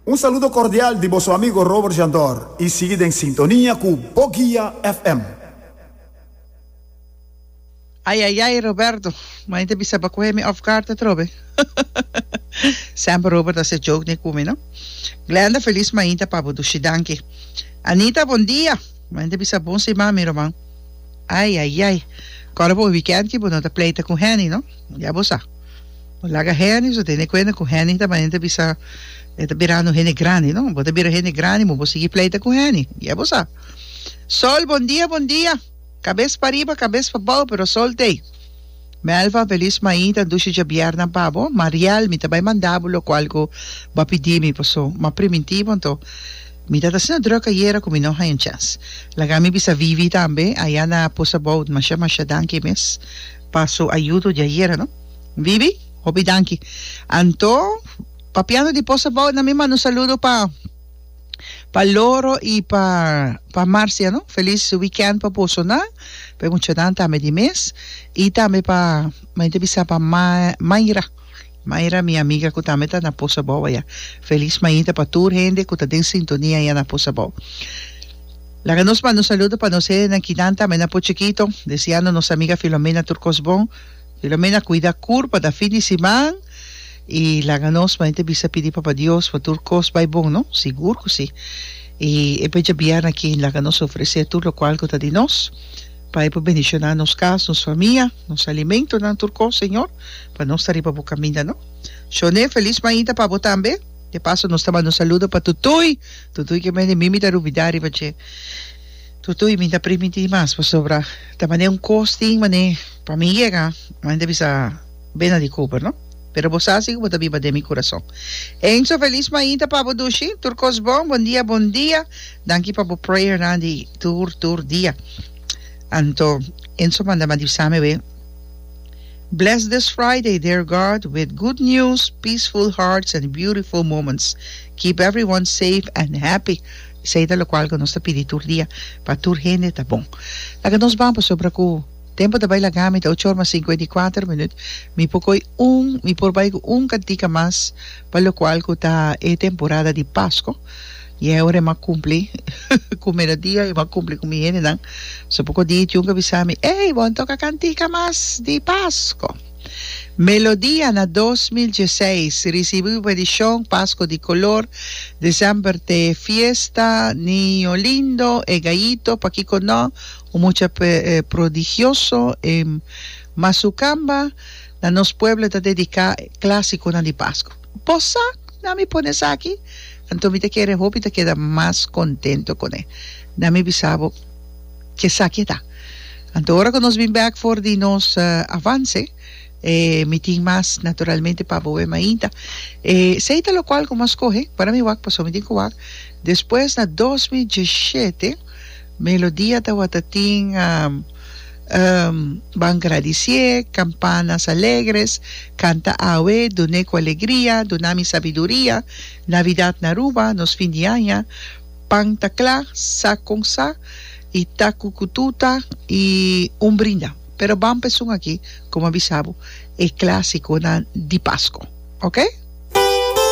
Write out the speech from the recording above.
Un saludo cordial di boso amigo Robert Jandor y sigui den sintonia cu Boguia FM. Ayayay Roberto, ma ente bisa pa cohe mi off guard atrobe. Semper Robert a hace joke ne cu mi, no? Glenda Feliz Mainta pa bo dushi danki. Anita Bon dia, ma ente bisa bon siman mi roman. Ayayay, cora bo weekend ki bo no ta pleita cu Henny, no? Ya bo sa. Bo laga Henny, so tene cuenta cu Henny ta manera ta bisa e ta birando hende grandi, no? Bo ta bira hende grandi, mo bo sigui pleita cu Henny. Dia bo sa. Sol, bon dia, bon dia. Cabes pariba, cabes pabao, pero sol t'ey. Melva, Feliz Maita, Dushi Djabiernan pa bo. Mariel, mi ta bay manda bo loco algo bo a pidi mi, paso ma primitivo, anto mi ta ta asina druk ayera cu mi no haya un chance. Laga mi bisa Vivi tambe, aya na Poes Abou, masha, masha danki mes. pa su ayudo di ayera no Bibi. Hopi danki anto papiando di pos abao na mi manda un saludo pa pa loro y pa pa Marcia no feliz weekend pa boso nan pa e muchanan tambe di mes y tambe pa men ta bisa pa ma Mayra Mayra mi amiga cu tambe ta na Posabou aya. Feliz mainta pa tur hende cu ta den sintonia aya na Posabou. Laga nos manda un saludo pa nos hende nan kinan tambe na Pochiquito, deseando nos amiga Filomena tur cos bon. Filomena cuida cur pa ta fin di siman y laga nos mainta bisa pidi Papa Dios pa tur cos bay bon no, sigur cu si. Y e becha bia na kin laga nos ofrece tur locual cu ta di nos pa e por bendiciona nos cas, nos famia, nos alimentonan tur cos Señor. Pa nos ta riba bo caminda no. Shone, feliz maida pa bo tambe. De paso nos ta manda un saludo pa Tutuy, Tutuy ke mende mimi ta rubida riba dje. Tutuy mi ta primi di mas pasobra ta mane un kos tin mane pa mi yega mane ta bisa bena di Cooper no pero bo sa si ku bo ta biba den mi kurason. Enzo feliz maida pa bo dushi, tur kos bon, bon dia bon dia. Danki pa bo prayernan di tur tur dia. Anto Enzo manda ma di bisa mi awe. Bless this Friday dear God with good news, peaceful hearts and beautiful moments. Keep everyone safe and happy. Esei ta lokual ku nos ta pidi tur dia pa tur hende ta bon. Laga nos ban pasobra ku tempu ta bai laga mi ta ocho or mas sinkuenta i kuater minut mi por koi un mi por bai ku un kantika mas pa lokual ku ta e temporada di Pasko. Y aora e m'a cumpli cu melodia y m'a cumpli cu mi hendenan, so poco di e Jun a bisa mi, Ey, bo a toca cantica mas di Pasco. Melodia na dos mil dieseis ricibi un edicion Pasco di color, december t'e fiesta, Niño lindo, e gayito, pakico no, un mucha prodigioso, e Masucamba, na nos pueblo ta dedica clasiconan di Pasco. Por sa na mi pone esaki? Anto mi ta kere hopi ta keda mas kontento kune. Na mi bisa bo ke esaki ta. Anto ora ku nos bin bek for di nos avanse, e mi tin mas naturalmente pa boe mainta. E esei ta lokual ku mas kohe para mi wak, paso mi tin ku wak. Despues na dos mil diesshete, Melodia tabata tin. Ban gradicié, campanas alegres, canta awe, dun'é cu alegria, duna mi sabiduria, Navidad na Aruba, nos fin di aña, pan ta cla, sa con sa, y ta cucututa y un brinda. Pero ban pa esun aki, como a bisa bo, e clásiconan di Pasco. Ok?